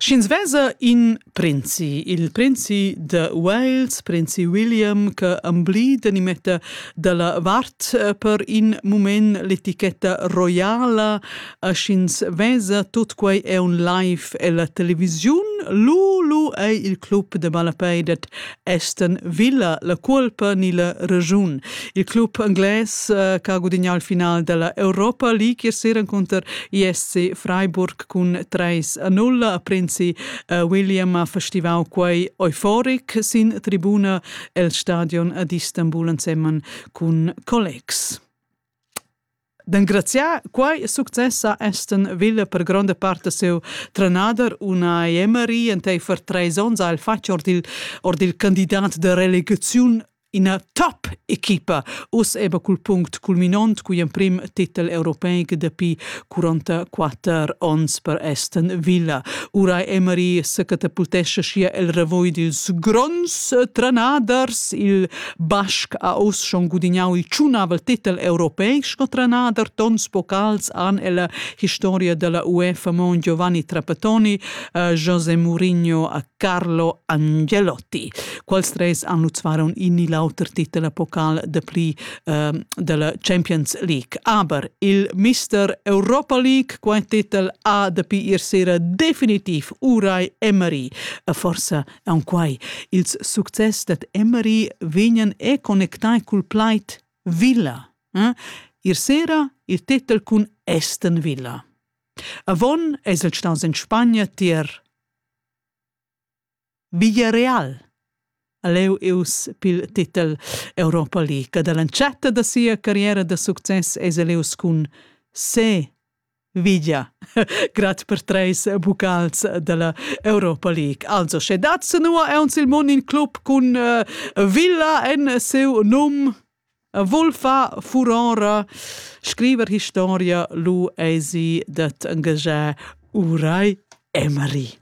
Sch'ins vesa in prinzi, il prinzi de Wales, prinzi William, che amblida ni metta dalla vart per in mument l'etichetta roiala, a sch'ins vesa tut quei è un live ella televisiun, lu lu ei il club de malapeidet Aston Villa la cuolpa ni la regiun. Il club englais eh, che ha gudignato il finale della Europa League ier sera contro ISC Freiburg cun 3-0. A Prinzi eh, William ha festivau quei euforic sin tribuna el stadion ad Istanbul insemmen cun collegs. D'engraziar quai success ha Aston Villa per gronda part da siu trenader una Emery enteifer treis onns ha el fatg ord il, ord il candidat de relegaziun ina top equipa us eba cul punct culminont cugl emprim titel europeic dapi 44 onns per Aston Villa. Ura Emery secatapultescha schia el revoy dils gronds trenaders, il Basc ha uss schon gudignau il tschunavel titel europeic sco trenader tons vocals han ella historia della UEFA Mon Giovanni Trapattoni, eh, José Mourinho a Carlo Angelotti. Quals tres annutsvaron inni l'auter titel a pokal de pli eh, della Champions League. Aber il Mister Europa League quai titel ha de pi ir sera definitiv Urai Emery, forse Aunquai ils success dad Emery vegnan e connectai cul plaid villa. Eh? Ir sera il titel cun Aston Villa. Avon eis el staus en Spagna tier Villarreal. Leu eus pil titel Europa League. Dall'entschatta da sia carriera da success eis el eus cun Se Vigia. Grat per treis bucals dalla Europa League. Also, sche dat senua aunc il mon in club cun uh, Villa en seu num, volfa furonra, scriver historia, lu eisi dat engagiar Urai Emery.